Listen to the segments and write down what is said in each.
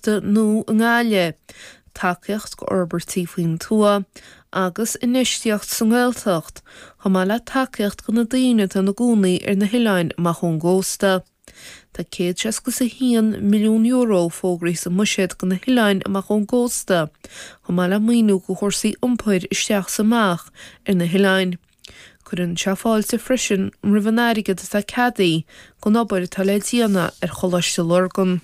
nó i nGaille, tacaíocht go fhorbairtí faoin tuath agus infheistíocht sa nGaeltacht, chomh maith le tacaíocht go na daoine atá ina gcónaí ar na hoileáin amach ón gcósta. Tá céad seasca is a haon milliún euro fógraithe sa mbuiséad go na hoileáin amach ón gcósta, chomh maith le maoiniú go chúrsaí iompair isteach is amach ar na hoileáin. Cuireann sé fáilte freisin roimh an airgead atá ceadaí gon obair atá le déanamh ar Choláiste Lurgan.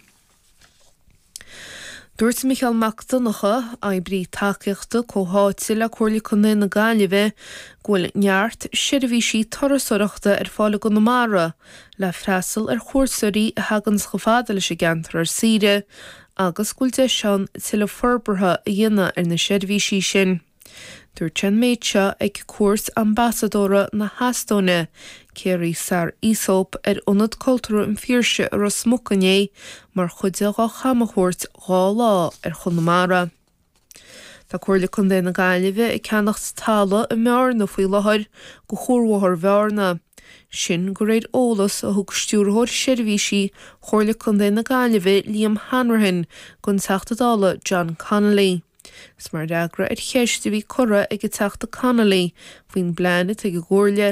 Dúirt Micheál Mac Donnacha, Oibrí Tacaíochta Comhtháite le Comhairle Contae na Gaillimhe, go bhfuil neart seirbhísí turasóireachta ar fáil i gConamara le freastal ar chuairteoirí a theaganns chomh fada leis an gceantar ar saoire agus go bhfuil deis ann tuilleadh forbartha a dhéanamh ar na seirbhísí sin. Dúirt sé an méid seo ag cuairt Ambasadóra na hEastóine, Kairi Saar-Isop, ar Ionad Cultúrtha an Phiarsaigh i Ros Muc inné mar chuid dhá camchuairt dhá lá ar Chonamara. Tá Comhairle Contae na Gaillimhe ag ceannacht tala i mBearna faoi láthair go Chuarbhóthar Bhearna, sin go réir eolas a thug Stiúrthóir Seirbhísí Chomhairle Contae na Gaillimhe Liam Hanrahan gon Teachta Dála John Connolly. Is mar fhreagra ar cheist a bhí curtha ag an Teachta Connolly faoin bplean atá ag an gComhairle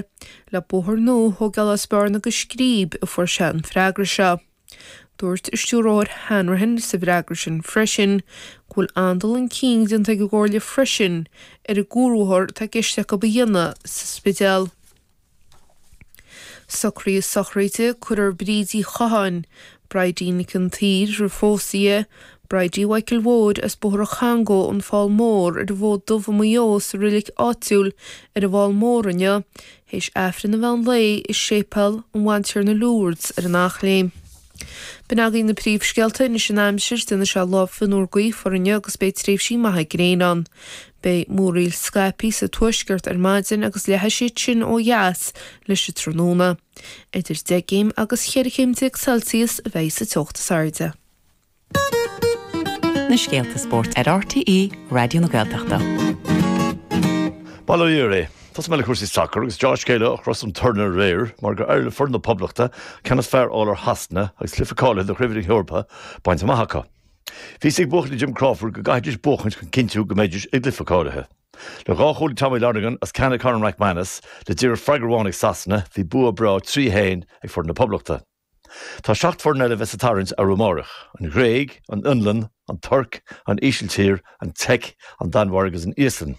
le bóthar nua a thógáil as Bearna go Scríb a fuair sé an freagra seo. Dúirt an Stiúrthóir Hanrahan sa bhfreagra sin freisin go bhfuil an-dul chun cinn déanta ag an gComhairle freisin ar an gcuarbhóthar atá i gceist acu a dhéanamh sa Spidéal. Socruithe sochraide cuirfear Bríd Uí Chatháin, Bridie Nic an tSaoir, roimh phósadh di, Bridie Mhichael Mhóir as Bóthar an Changó, An Fál Mór, ar an bhFód Dubh i Maigh Eo sa roilic áitiúil ar an bhFál Mór inniu, théis Aifreann an Mheán Lae i Séipéal Ár mBantiarna Lourdes ar an Eachléim. B'in agaibh na príomhscéalta anois an aimsir don lá seo lá fionnuar gaofar ann agus beidh tréimhsí maithe gréine ann. Beidh múraíl scaipí sa tuaisceart ar maidin agus leathfaidh siad sin ó dheas leis an tráthnóna. Idir 10 gcéim agus 14 céim Celsius a bheas sa teocht is airde. Na scéalta spóirt ar RTÉ Raidió na Gaeltachta. Bail ó Dhia oraibh. Tosóidh muid le cúrsaí sacair agus dea-scéala ó Chros an Tornóra aréir mar gur éirigh le foireann na Poblachta ceann is fearr a fháil ar Shasana agus cluiche cáilithe do Chraobh na hEorpa a bhaint amach acu. Bhí a fhios ag buachaillí Jim Crawford go gcaithfidís buachaint chun cinntiú go mbeidís ag cluiche cáilithe. Le dhá chúl ag Tommy Lonergan is ceann ag Conor McManus le díreach freagra amháin ag Sasana bhí bua breá 3-1 ag foireann na Poblachta. Tá seacht bhfoireann eile a bheas sa tarraingt arú amáireach, An Ghréig, An Fhionlainn, An Tuirc, An Ísiltír, An tSeic, An Danmhairg agus An Íoslainn.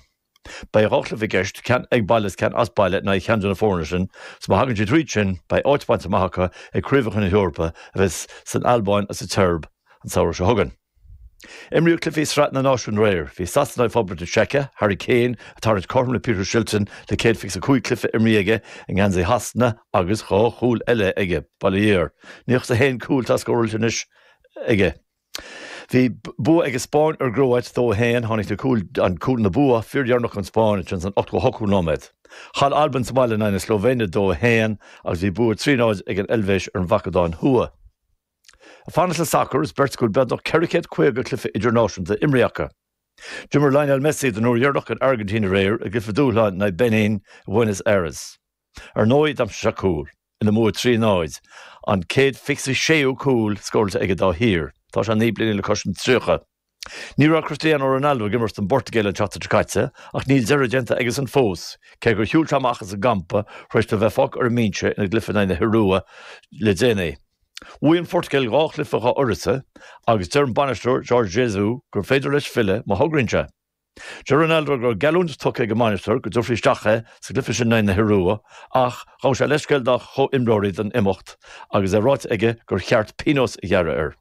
Beidh dhá chluiche i gceist, ceann ag baile agus ceann as baile in aghaidh cheann de na foirne sin, so má thagann siad thríd sin beidh áit bainte amach acu ag Craobhacha na hEorpa a bheas san Albáin agus sa tSeirb an samhradh seo chugainn. Imríodh cluichí Sraith na Náisiún aréir. Bhí Sasana i bPoblacht na Seice, Harry Kane ag tarraingt cothrom le Peter Shilton le 125 cluiche imrithe aige i ngeansaí Shasana agus dhá chúl eile aige, bail ó Dhia air. Níl fhios agam cén cúl atá scóráilte anois aige. Bhí bua ag an Spáinn ar an gCróit 2-1, tháinig na cúil an cúl na bua fíordheireanach don Spáinn ansin san 88ú nóiméad. Chaill Albain sa bhaile in aghaidh na Slóivéine 2-1 agus bhí bua 3-0 ag an Eilvéis ar an Macadóin Thuaidh. Ag fanacht le sacar, is beirt go bhfuil beagnach 450 cluiche idirnáisiúnta imrithe acu. D'imir Lionel Messi don uair dheireanach don Airgintín aréir i gcluiche dúshláin in aghaidh Benin i Bhuenos Aires. Ar ndóigh, d'aimsigh sé cúl ina mbua trí náid, an céad fiche is séú cúl scóráilte aige dá thír. Tá sé naoi bliana le cois an tríochadh. Ní raibh Cristiano Ronaldo ag imirt don bPortaingéil an tseachtain seo caite ach níl deireadh déanta aigesan fós. Cé gur shiúil sé amach as an gcampa tar éis dó a bheith fágtha ar an mbinse ina gcluiche in aghaidh na hIorua le déanaí, bhuaigh an Phortaingéil dhá chluiche dhá uireasa agus deir an bainisteoir, Jorge Jesus, gur féidir leis filleadh má thograíonn sé. Deir Ronaldo go raibh geallúint tugtha ag an mbainisteoir go dtabharfaí isteach é sa gcluiche sin in aghaidh na hIorua ach ghabh sé leithscéal dá chomhimreoirí as imeacht agus é ráite aige gur cheart pionós a ghearradh air.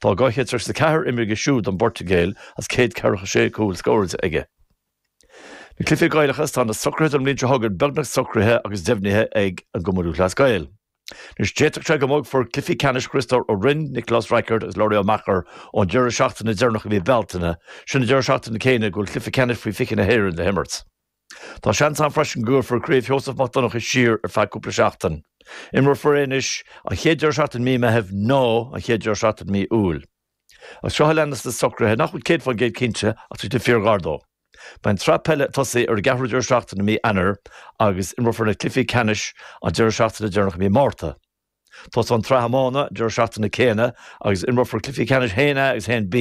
Tá 234 imrithe aige siúd don bPortaingéil is 146 cúl scóráilte aige. Na cluichí Gaelacha, is tá na socruithe don mbliain seo chugainn beagnach socraithe agus deimhnithe ag an gCumann Lúthchleas Gael. Anois, d'fhéadfadh sé go mbogfar cluichí ceannais Chriostóir Uí Rinn, Nioclás Rackard agus Labhraí Uí Mheachair ón deireadh seachtaine deireanach i mí Bealtaine, sin an deireadh seachtaine céanna go bhfuil cluiche ceannais Faoi 20 na hÉireann le himirt. Tá seans ann freisin go gcuirfear Craobh Sheosamh Mac Donncha siar ar feadh cúpla seachtain. Imreofar é anois an chéad deireadh seachtaine i mí Meithimh nó an chéad deireadh seachtaine i mí Iúil. Is seo a leanas na socruithe nach bhfuil 100% cinnte ach tá siad fíor-ghar dó. Beidh an tsraith peile ag tosaí ar an gceathrú deireadh seachtaine i mí Eanáir agus imreofar na cluichí ceannais an deireadh seachtaine deireanach i mí Márta. Tosóidh an tsraith iomána an deireadh seachtaine céanna agus imreofar cluichí ceannais 1A agus 1B